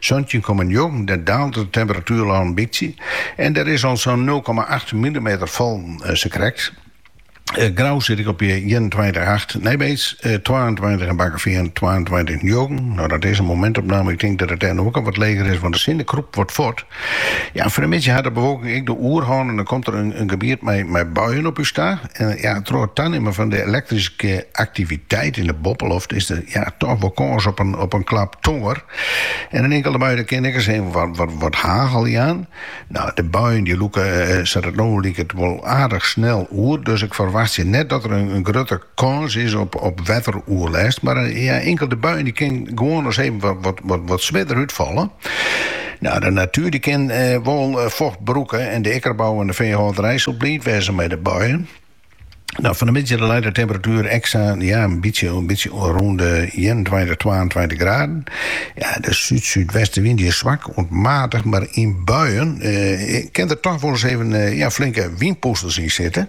Santjin komma njoggen dan daalt de temperatuer al in bytsje en der is al sa'n nul komma acht millimeter fallen, sakrekt. Grou sit ik op ienentweintich acht, Nijbeets twaentweintich en Bakkeveen twaentweintich njoggen. No dat is in momentopname, ik tink dat it dêr no ek al wat leger is, want de sinne krûpt wat fuort. Ja, fan 'e middei hat de bewolking ek de oerhân en dan komt der in gebiet mei buien op ús ta. En ja, troch it tanimmen fan de elektryske aktiviteit yn de boppeloft is der toch wol kâns op in klap tongear. En in inkelde bui dy kin ek ris even wat hagel jaan. Nou, de buien dy lûke sa't it no liket wol aardich snel oer, dus ik ferwachtsje net dat der in grutte kâns is op wetteroerlêst, mar in inkelde bui dy kin gewoan ris even wat swierder útfalle. No, de natuer dy kin wol focht brûke en de ikkerbou en de feehâlderij sil bliid wêze mei de buien. Fan 'e middei leit de temperatuer ek sa in bytsje rûn de ienentweintich, twaentweintich graden. De súd-súdwestewyn is swak oant matich, mar yn buien kin der toch wol ris even flinke wynpûsters yn sitte.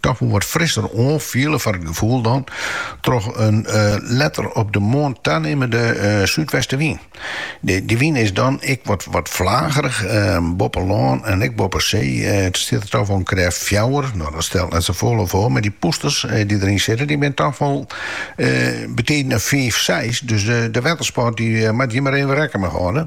Toch wol wat frisser oanfiele foar it gefoel dan troch in letter op de moarn tanimmende súdwestewyn. Dy wyn is dan ek wat flagerich, boppe lân en ek boppe see stiet der toch wol in krêft fjouwer. No, dat stelt net sa folle foar, mar dy pûsters dy't deryn sitte, dy binne toch wol betiden in fiif, seis, dus de wettersport dy moatte hjir mar even rekken mei hâlde.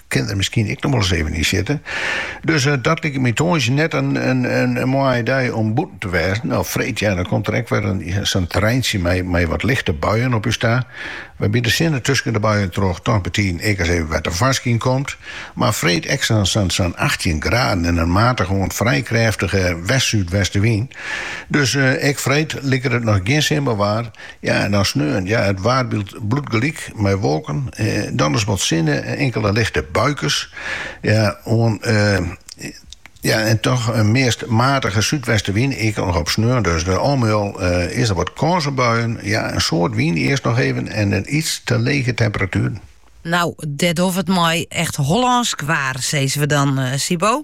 kin der miskien ek noch wolris even yn sitte. Dus eh, dat liket my tongersdei net in, in, in, in moaie dei om bûten te wêzen. Nou, freed, ja, dan komt der ek wer sa'n treintsje mei, mei wat lichte buien op ús ta. Wêrby't de sinne tusken de buien troch toch betiden ek ris even wat tefoarskyn komt. Mar freed ek sa'n sa, sa 18 graden en in matige oant frij krêftige west-súdwestewyn. Dus eh, ek freed liket it noch gjin simmerwaar. Ja, en dan sneon, ja, it waarbyld bliuwt gelyk mei wolken, dan ris wat sinne, inkele lichte buikes, ja, oan, ja, en toch in meast matige súdwestenwyn, ek noch op sneon dus. Al mei al is der wat kâns op buien, ja, in soad wyn earst noch even en in iets te lege temperatueren. Nou, dêr ha we it mei, echt Hollânsk waar, sizze we dan, Sybo.